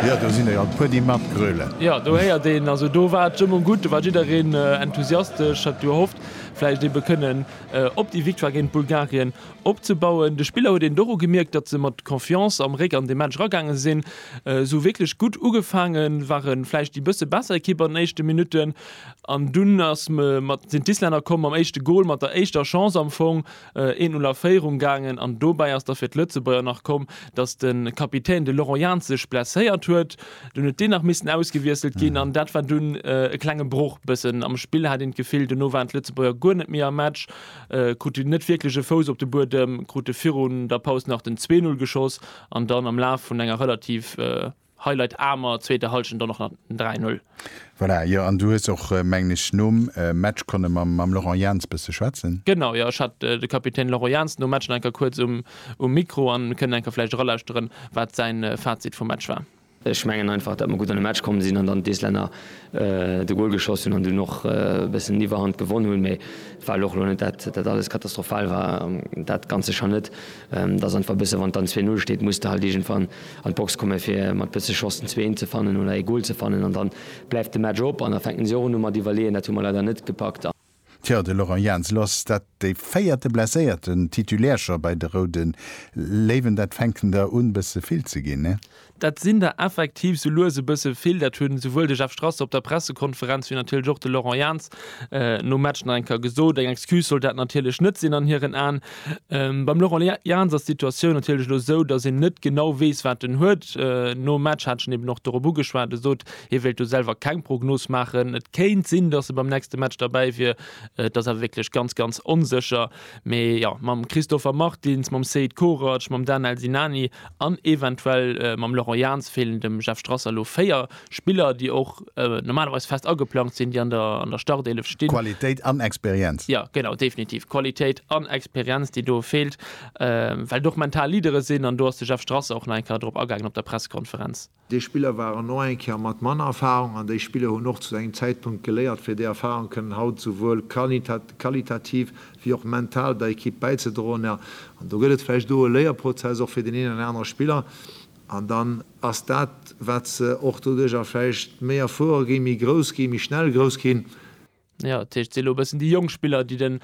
Jo do sinn der jo e puer déi mat gröle. Jo do héiert een, also do war d'Stëmmung gutt, do war jiddereen enthusiastesch, hat gehofft vläicht ebe kënnen op déi Victoire géint Bulgarien opzebauen. De Spiller huet een et och ugemierkt, datt se mat Confiance am Réck an de Match eragaange sinn, sou wierklech gutt ugefaange ware vläicht déi bësse besser Ekipp an den éischte Minutten an dunn ass mat sinn d'Islänner komm mam éischte Gol, mat der éischter Chance am Fong Een Null a Féierung gaangen an dobäi ass da fir d'Lëtzebuerger nach komm, datt de Kapitän de Laurent Jans sech blesséiert huet. Dunn huet deen nach missen ausgewiesselt ginn an dat war dunn e klenge Broch. Bëssen am Spill hat een d'Gefill, duerno waren d'Lëtzebuerger guer net méi am Match, kruten net wierklech e Fouss op de Buedem, krute virun der Paus nach den Zwee-Null geschoss an dann am Laf vun enger relativ. Hei leit Amer, zweete Halschent dann och nach den 3, 0. Voilà, jo, an du hues och, mengen ech, nom Match konne mam Laurent Jans bësse schwätzen. Genau, jo, ech hat de Kapitän Laurent Jans nom Match nach eng Kéier kuerz um Mikro an mir kënnen eng Kéier vläicht eralauschteren, wat säin Fazit vum Match war. Ech mengen einfach, datt mer gutt an de Match komm sinn an dann d'Islänner de Gol geschoss hunn an dunn och e bëssen un Iwwerhand gewonn hunn, mee et war elo och elo net dat, dat alles katastrophal war, dat Ganze scho net. Et ass einfach e bësse, wann et dann zwee, null steet, muss de halt iergendwann an d'Box kommen fir mat bësse Chance den zweeten ze fannen oder ee Goal ze fannen an dann bleift de Match op an da fänken si och erëm u mat iwwerleeën. Dat hu mer leider net gepackt. Tjo, de Laurent Jans loss dat de véierte blesséierten Titulaire scho bei de Roude Léiwen. Dat fänken der un bësse vill ze ginn, ne? Dat sinn der effektiv sou lues e bësse vill. Dat hunn souwuel de Jeff Strasser op der Pressekonferenz wéi natierlech och de Laurent Jans nom Match nach eng Kéier gesot. Eng Excuse sollt dat natierlech net sinn an hiren Aen. Beim Laurent Jans ass d'Situatioun natierlech elo esou, datt een net genau weess, wat en huet. Nom Match hat ech en eben och dorop ugeschwat. E sot, hie wéilt do selwer keng Prognos maachen. Et kéint sinn, datt e beim nächste Match derbäi wier. Et ass awer wierklech ganz, ganz onsécher. Mee jo, mam Christopher Martins, mam Seid Korac, mam Danel Sinani an eventuell mam Laurent Jans feelen dem Jeff Strasser elo véier Spiller, déi och normalerweis fest ageplangt sinn, déi an der Startelef stinn. Qualitéit an Experienz. Jo, genau, definitiv. Qualitéit an Experienz, déi do feelt, well d'och mental Leadere sinn. An do ass de Jeff Strasser och nach eng Kéier drop agaangen op der Pressekonferenz. Déi Spiller waren och eng Kéier mat manner Erfarung an déi Spiller hunn och zu engem Zäitpunkt geléiert, fir déi Erfarung kënnen haut souwuel qualitativ wéi och mental der Ekipp bäizedroen. An do gëtt et vläicht do e Léierprozess och fir deen een an anere Spiller, An dann ass dat, wat se och doduerjer vläicht méi erfuere ginn, méi grouss ginn, méi schnell grouss ginn. Jo, dat heescht, et si elo e bëssen déi jonk Spiller, déi den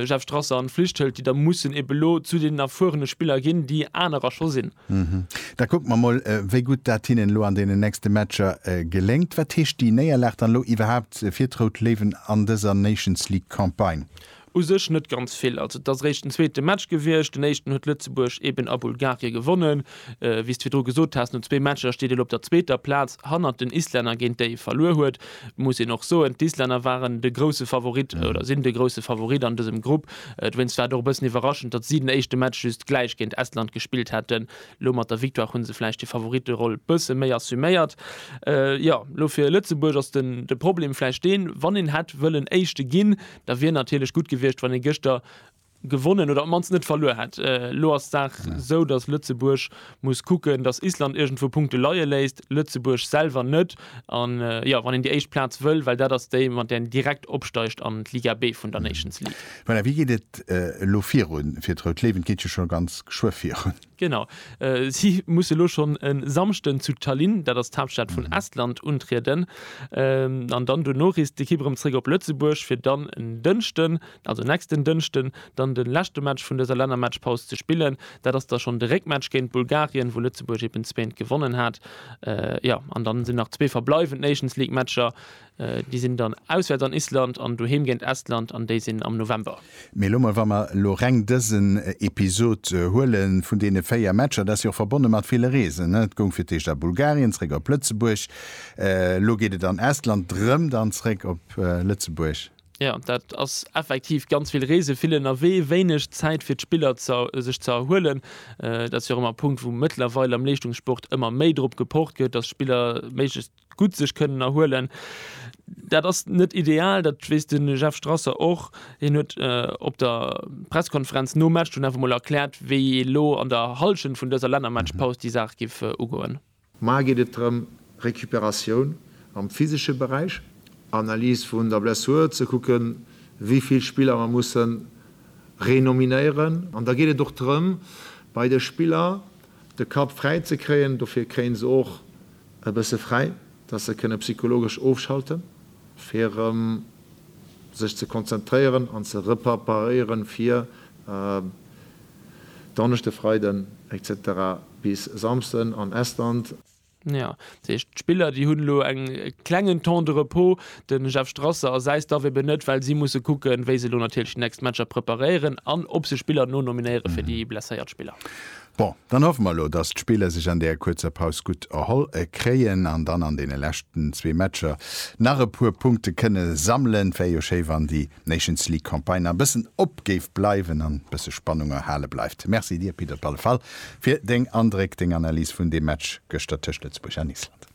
Jeff Strasser an d'Flicht hëlt, déi da mussen eben elo zu deenen erfuerene Spiller ginn, déi anerer scho sinn. Da kucke mer mol, wéi gutt dat hinnen elo an deenen nächste Matcher geléngt. Wat heescht déi Néierlag dann elo iwwerhaapt fir d'Rout Léiwen an dëser Nations-League-Campagne? U sech net ganz vill. Also et ass eréischt den zweete Match gewiescht. Den éischten huet Lëtzebuerg eben a Bulgarie gewonnen. Wéi s de virdru gesot has, no zwee Matcher steet een op der zweeter Plaz hannert den Islänner, géint déi ee verluer huet. Et muss een och soen, d'Islänner waren de grousse Favorit oder sinn de grousse Favorit an dësem Grupp. Dowéinst war et och e bëssen iwwerraschend, datt si den éischte Match just gläich géint Estland gespillt hätten. Elo mat der Victoire hu se vläicht déi Favoritteroll e bësse méi assuméiert. Jo, elo fir Lëtzebuerg ass de Problem vläicht deen, wann een hätt wëllen Éischte ginn, Da wier natierlech gutt gewiescht, wann ee gëschter gewonnen oder op d'mannst net verluer hätt. Elo ass d'Saach esou, datt Lëtzebuerg muss kucken, datt Island iergendwou Punkte leie léisst, Lëtzebuerg selwer net. A jo, wann een déi éischt Plaz wëll, well dat ass déi, mat där een direkt opsteigt an d'Liga B vun der Nations League. Voilà, wéi geet et elo virun fir d'Rout Léiwen? Et geet jo scho ganz geschwë virun. Genau. Si musse lo schonn e Samschden zu Tallinn, dat ass d'Haaptstad vun Estland, untrieden. An dann dono reest d'Ekipp erëm zréck op Lëtzebuerg, fir dann en Dënschden, also nächsten Dënschden, dann de leschte Match vun dëser Lännermatchpaus ze spillen. Dat ass da schonn de Réckmatch géint Bulgarien, wou Lëtzebuerg eben zwéint gewonnen hat. Jo, an dann sinn nach zwee verbleiwend Nations-League-Matcher. Déi sinn dann auswäerts an Island an doheem géint Estland an déi sinn am November. Mee lo mol, wa mer lo reng dësen Episod huele vun deene véier Matcher, dat ass jo och verbonne mat ville Reesen. Et goung fir d'éischt a Bulgarien, zréck op Lëtzebuerg. Elo geet et an Estland, rëm dann zréck op Lëtzebuerg. Jo, dat ass effektiv ganz vill Reese, vill ënnerwee, wéineg Zäit fir d'Spiller sech ze erhuelen. Dat ass jo och ëmmer e Punkt, wou mëttlerweil am Leeschtungssport ëmmer méi drop gepocht gëtt, datt Spiller méiglechst gutt sech kënnen erhuelen. Dat ass net ideal, dat weess de Jeff Strasser och. Hien huet op der Presskonferenz nom Match dunn awer mol erkläert, wéi ee lo an der Hallschent vun dëser Lännermatchpaus déi Saach géif ugoen. Mar geet et drëm, Recuperatioun am physesche Beräich, Analys vun der Blessur, ze kucken, wéi vill Spiller mer musse renominéieren. An da geet et och drëm, bei de Spiller de Kapp fräi ze kréien. Dofir kréie se och E bësse fräi, dass se kënne psychologesch ofschalten, fir erëm sech ze konzentréieren an ze reperparéieren fir Donneschde, Freiden, etc. Bis Samsden an Estland. Jo, dat heescht d'Spiller, déi hunn elo en klengen Temps de repos. De Jeff Strasser a säi Staff eben net, well si musse kucken, wéi se elo natierlech déi nächst Matcher preparéieren an ob se Spiller nonominéiere fir déi blesséiert Spiller. Bon, dann hoffe mer elo, dass d'Spiller sech an där kuerzer Paus gutt erholl kréien an dann an deene leschten zwee Matcher nach e puer Punkte kënne sammelen. Wär jo schéi, wann déi Nations League Campagne nach e bëssen op géif bleiwen an e bësse Spannung erhale bleift. Merci dir, Pit, op alle Fall fir deng Andréck, deng Analys vun deem Match gëschter tëscht Lëtzebuerg an Island.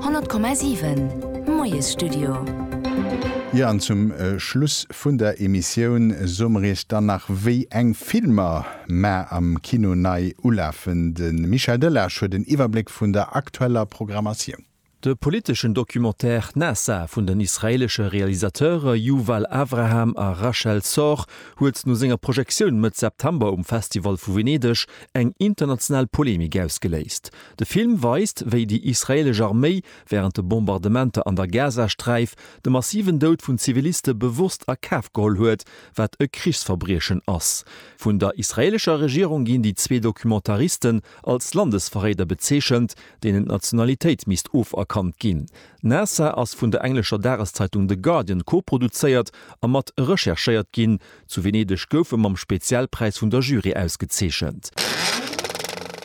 100,7 Moiesstudio. Jo an zum Schluss vun der Emissioun soe mer iech dann nach wéi eng Filmer mar am Kino nei ulafen. De Michel Delage huet en Iwwerbléck vun der aktueller Programmatioun. De politeschen Documentaire Nasa vun den israeelesche Realisateure Yuval Avraham a Rachel Sorge huet no senger Projektioun Mëtt September um Festival vu Venedeg eng international Polemik ausgeléist. De Film weist, wéi déi israeelesch Arméi wärend de Bombardementer an der Gazasträif de massiven Doud vun Ziviliste bewosst a Kaf geholl huet, wat e Krichsverbriechen ass. Vun der israeelescher Regierung ginn déi zwee Documentaristen als Landesverréider bezeechent, deenen d'Nationalitéit misst oferkannt ginn. Nassar ass vun der englescher Dageszeitung The Guardian koproduzéiert a mat recherchéiert ginn, Zu Venedeg gouf e mam Spezialpräis vun der Jury ausgezeechent.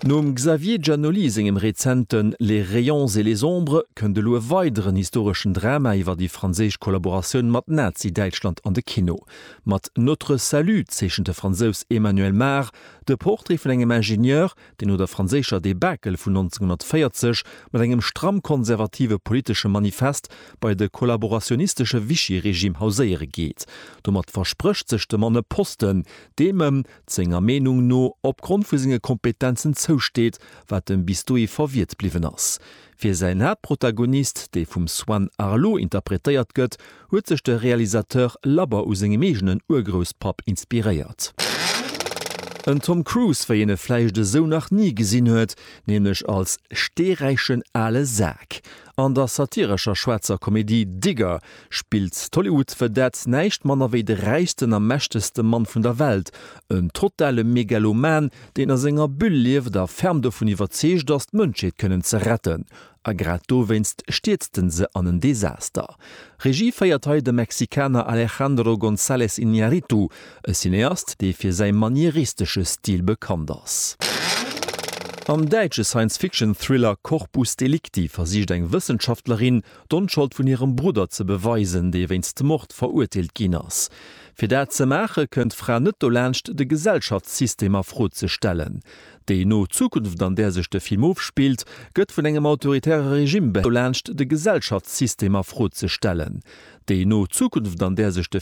Nom Xavier Giannoli sengem rezenten Les rayons et les ombres kënnt elo e weideren historeschen Drama iwwer déi franséisch Kollaboratioun mat Nazi-Däitschland an de Kino. Mat Notre salut zeechent de Fransous Emmanuel Mar de Portrait vun engem Ingenieur, déi no der franséischer Debakel vun 1940 mat engem stramm konservative politesche Manifest bei de kollaborationistesche Vichy-Regime hauséiere geet. Domat versprécht sech de Mann e Posten, deem ëm, senger Meenung no, opgrond vu senge Kompetenzen zousteet, wat ëm bis dohi verwiert bliwwen ass. Fir säin Haaptprotagonist, dee vum Swan Arlo interpretéiert gëtt, huet sech de Realisateur labber u sengem eegenen Urgrousspapp inspiréiert. En Tom Cruise, wéi een e vläicht esou nach ni gesinn huet, nämlech als steeräichen ale Sak an der satirescher schwaarzer Komedie Digger, spillt d'Hollywood Vedette näischt manner wéi de räichsten a mächtegste Mann vun der Welt, en totale Megaloman, deen a senger Bulle lieft a ferm dovun iwwerzeegt ass, d'Mënschheet kënnen ze retten. A grad dowéinst stierzt en se an en Desaster. Regie féiert hei de Mexikaner Alejandro González Iñárritu, e Cineast, dee fir säi manieristesche Stil bekannt ass. Am däitsche Science-Fiction-Thriller Corpus Delicti versicht eng Wëssenschaftlerin, d'Onschold vun hirem Brudder ze beweisen, dee wéinst Mord verurteelt ginn ass. Fir dat ze maache kënnt d'Fra net dolaanscht, de Gesellschaftssystem a Fro ze stellen. Déi no Zukunft, an där sech de Film ofspillt, gëtt vun engem autoritäre Regime dolaanscht, de Gesellschaftssystem a Fro ze stellen. Déi no Zukunft, an där sech de.